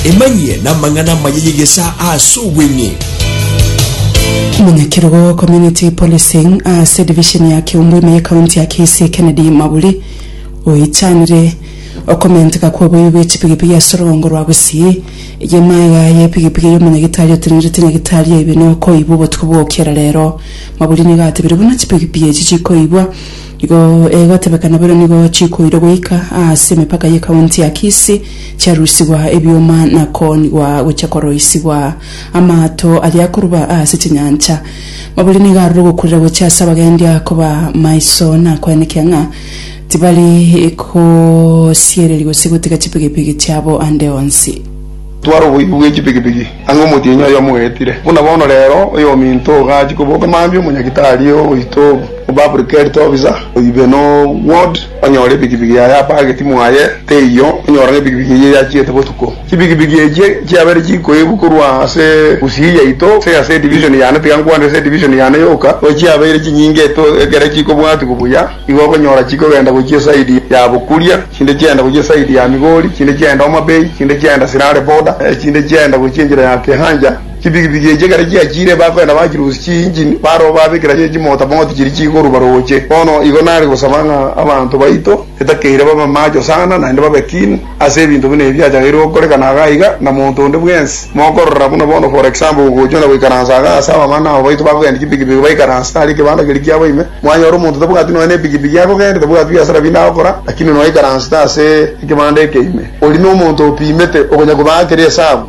Emanyie namang'ana amaya y'egesaa ase obweng'e. Omonyakerogo wa Community Policing ase division ya Kiombo ime ye county ya Kisii Kennedy Maburi oichanire okomenteka kwa oboiyo bwe chipigipigi ase orogongo rwa Gusii eye maega ya epigipigi eye omonyagitari otenerete nyagitari aibe nokoibwa obotuko bwa okiera rero Maburi nigo atebire buna chipigipigi echi chikoibwa Igo egotebeka naboigo nigo chikoirwa goika ase emepaka ye county ya Kisii, chiarusigwa ebioma na koonigwa gochia koroisigwa amaato aria akoruba ase chinyancha. Maburi nigo arure gokurera gochia ase abagendi akoba maiso na koenekia ng'a tibari gosiereria gose gotiga chipigipigi chiabo ande onsi. Tware oboibi bwe chipigipigi ang'e omotienyi oyomo ogetire. Buna bono rero, oyominto ogo gachia koboka mambia omonyagitari oito o Public Health Officer oibe no ward onyore epigipigi yaye apageti mwaye teiyo onyora ng'a epigipigi eyio yachiete botuko. Chipigipigi echio chiabere chikoibwa korwa ase gusii yaito gose ase edivision yane tiga nkwanire ase edivision yane yoka, roche chiabeire chinyinge ekero chikobwatwa buya. Nigo okonyora chikogenda gochia esaidi ya bokuria, chinde chiagenda gochia esaidi ya Migori, chinde chiagenda Homa Bay, chinde chiagenda Sirare Border, chinde chiagenda gochia enchera ya Kihancha. Chipigipigi echi ekero chiachiire bakogenda bachirusia chiinjini, barabwo babekera chimotamoti chiria chigoruba rooche. Bono igo nare gosaba ng'a abanto baito etakeire babe macho sana, naende babe keen. Ase ebinto buna ebi achageirie gokoreka na aga aiga, na monto onde bwensi, mokorora buna bono for example gogochwa na goikaransa aga ase abamama na abo baito bakogendia chipikipiki baikaranse tari ekebanda keria kiabo ime, mwanyora omonto tabwati nonya nepikipiki akogendia, tabwati biasara binde agokora, lakini nonya aikaransete ase ekebanda eke ime, oria nomonto opimete, okonya kobaa keria esabu.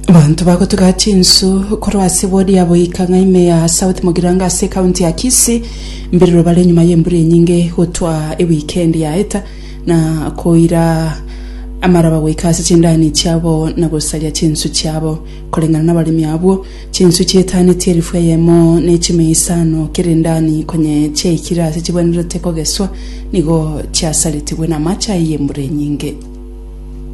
Abanto bagotuga chinsu korwa ase wodi ya Boika Ng'aime ya South Mugirango ase ekaunti ya Kisii, mbiriro bare nyuma y'embura enyinge gotwa ewikendi yaeta, na koira amaraba goika ase chindani chiabo na gosaria chinswe chiabo, koreng'ana nabaremi abwo, chinswe chietaaneti elifu eyemo ne chimia isano kera endani, konye chiaikire ase chibwenerete kogeswa, nigo chiasaritigwe namache ayio y'embura enyinge.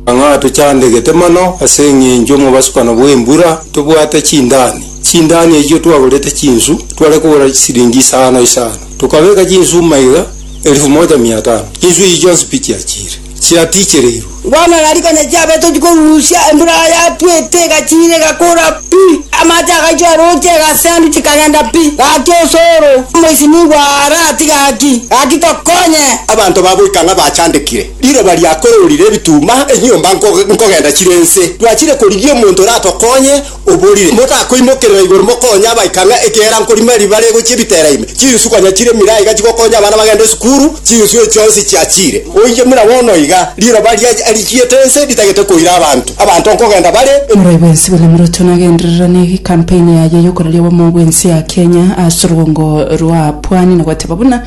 Ng'a tochandegete mono ase eng'encho omobasukano bw'embura tobwate chindani. Chindani echio twagorete chinsu tware kogora chisiringi isano isano. Tokabeka chinsu maiga elifu moja mia tano. Chinsu echi chionsi pi chiachiire? Chiatichereirwe. Bono ng'a riko nechiabete tochia korusia, embura yatwete egachiira egakora pi, amache agaichora roche egasendu chikagenda pi. Gaki osoro, omoisinigwa aarati gaki, gaki tokonye. Abanto ba goika ng'a bachandekire. Riroba riakororire ebituma, enyomba nkogenda chire ense. Twachire korigia omonto oratokonye, oborire, Motakoimokerera igoro mokonye abaika ng'a ekeera nkorima eri bare gochia ebitera ime. Chinswe konya chire mira iga chigokonya abana bagende esukuru, chinswe echi chionsi chiachire. Oinche muna bono iga, riroba riachiete ense ritagete koira abanto, abanto nkogenda bare. Omorai bwensi William Ruto nagenderera ne campaign yaye yokoraria obomo bwensi ya Kenya ase orugongo rwa pwani na goteba buna,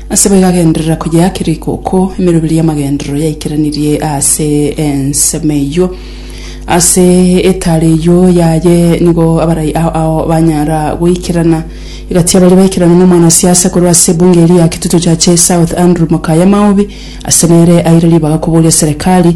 Ase boigo agenderera koyeakera ikooko emeroberi y'amagenderero yaikeranirie ase ensemo eyio. Ase eetare eyio yaye nigo abarai ao ao banyara goikerana. Egati y'abaria baikerana na omwanasiasa korwa ase ebunge eria ya Kitutu Churches South Andrew Mokaya Maobi ase nere aire ribaga koboria serekari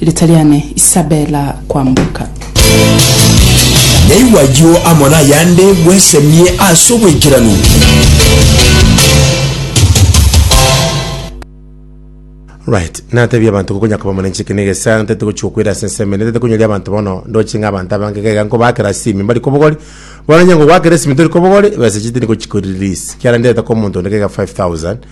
Rita riane Isabella Kwamboka. Naigwe ayio amo nayande bwesemie ase oboikeranu. Right, natebie abanto konya koba omonenche eke na egesaha ntete gochia gokwera ase ensemo ende ntete konyoria abanto bono ndoche ng'a abanto abange iga iga nkobakera ase ime mbari kobogori bono onye ngogwakera ase ime ntori kobogori ebesa echi tindi gochiko release ekiagera ndirete kora omonto onde iga iga 5000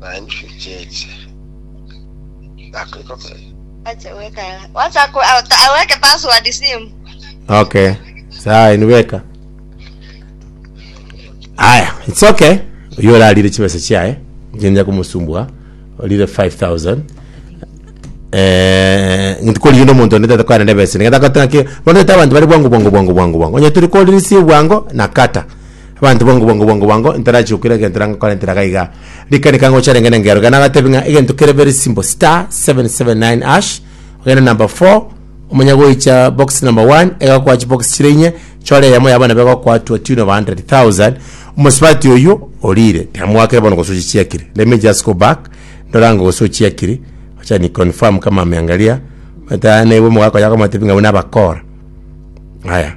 Na inche nchiche akoigokera. Acha weka. Wacha ku ata- aweke password simu. okay saa inu beka aya it's okay oyo orarire chibesa chiaye ngenja kumusumbua orire 5000 eh ngintu kori yende omonto onde tata kwana nebesa nigeta kotaki bono tata abanto bari bwango bwango bwango bwango bwango onye turi kori si bwango na kata Abanto bwango bwango bwango bwango ntarachie gokwira egento nangakora entera iga iga. Rikani ka ngocha renge nengero iga nagatebi ng'a egento kere very simple star 779 hash ogende number 4 omanya goicha box number 1 egakoa chibox chire inye chore eyemo yabo nabo egokoa to a tune of 100,000 omosubati oyio orire tiamoakire bono gose ochichiakire let me just go back ndore ango gose ochiakiri acha ni confirm kama ameangalia mataana iwe omogaka oyio akomatebi ng'a abwo nabakora aya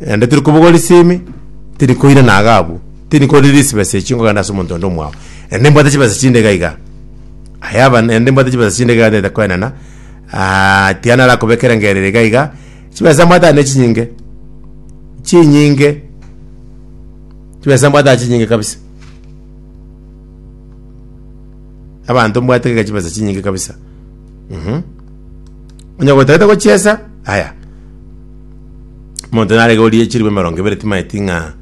naende tiri kobogwa risimi tiri koirana iga abwo tiri korire risibesa echi nkogenda ase omonto onde omwao naende nimbwate chibesa chinde iga iga ayaba naende nimbwate chibesa chinde iga ntagete koenana tiga narakobeka erangereri iga iga chibesa mbwate ande chinyinge chinyinge chibesa mbwate ande chinyinge kabisa abanto mbwate iga chibesa chinyinge kabisa mh onye gotagete gochiesa aya. Omonto narege orie chilibo emerongo ebere timaeti ng'a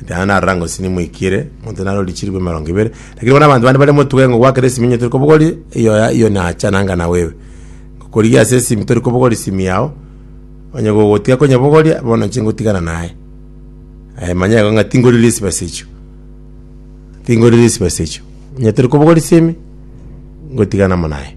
naende narora ng'a osini moikire, omonto nare orie chilibo emerongo ebere, lakini bono abanto bande bare motuge ng'a gwakera esimi onye tori kobogoria, eyo ya eyo nacha nanga nawe ewe. Ngokorigia ase esimi tori kobogoria esimi yao, onye gogotiga konyemogoria, bono inche ngotigana naye. Aye manya igo ng'a tingorire chibesa echio, tingorire chibesa echio. Onye tori kobogoria esimi, ngotigana amo naye.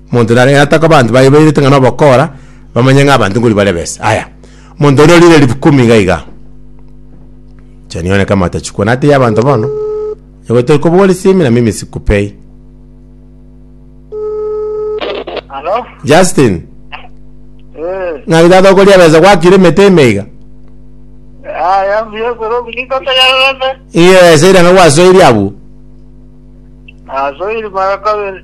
Omonto nare gataka abanto baye bairete ng'a nobokora, bamanye ng'a abanto nkori bare besa. Aya, omonto onde orire ribu kumi iga iga. Chani one kama atachukwa nate ya abanto bono, nyagote kobua risimi na mimi sikupei. Halo? Justin, Eh, ng'aki tata okoria besa gwakire emete ime iga? aya mbuya koro buliko tagarebe. Iye besa ira ng'a gwasoiri abwo. Asoiri mara kabere.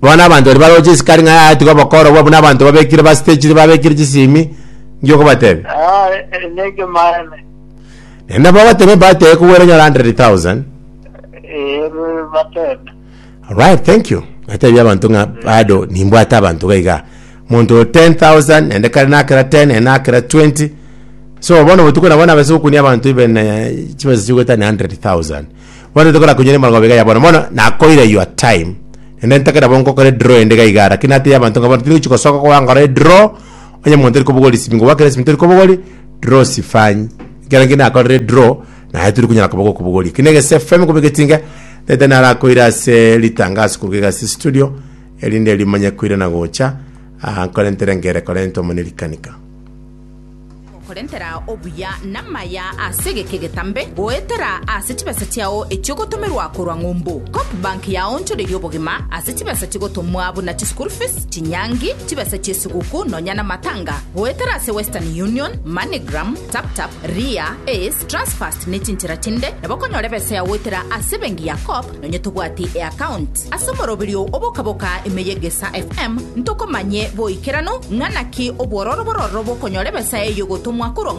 Bono abanto baria baroche esikari ng'a yaetigwe obokorogwa buna abanto babekire bastechiri babekire chisimi ngiya okobatebia. Aye nekemanye. Naende nabo bagatebia empata eye kogwera enyore 100,000. Ee, batebe. Alright, thank you. Natebia abanto ng'a bado nimbwate abanto iga iga. Monto oyo 10,000 naende kare nakera 10 naende nakera 20. So bono botuko nabo nabase gokunia abanto ibe ne chibesa chigwetania 100,000. Bono tokora konyora emerongo abere iga ya bono bono, nakoira your time. Naende ntakera bo nkokora edraw ende iga igaa, rakini natebia abanto ng'a bono tindi gochi gosoka gokoba nkore edraw, onye omonto tori kobogora esimi ngobua kera esimi tori kobogori, draw sifanyi. Ekero nki nakorire edraw, naye tori konyara koba gokobogoria. Ki na ege SFM koba egetinga, tete narakoira ase ritangaso korwa iga ase estudio, erinde rimanye koirana gocha, aa nkore ntere nkere kore ntomane rikanika. Korentera obuya namaya ase egeke getambe, goetera ase chibesa chiao echiogotomerwa korwa ng'umbu. Copbank yaonchoreirie obogima ase chibesa chigotomwa buna chischool fees, chinyangi, chibesa chiesiguku nonya namatanga. Goetera ase Western Union, Moneygram, TapTap, Ria, Ace, Transfast nechinchera chinde nabo okonyora ebesa yagoetera ase ebengi ya Coop Nonye tobwati eaccount ase omoroberio obokaboka ime y'Egesa FM, ntokomanye boikeranu ng'a naki obwororo bororo bokonyora ebesa eyio gotomwa korwa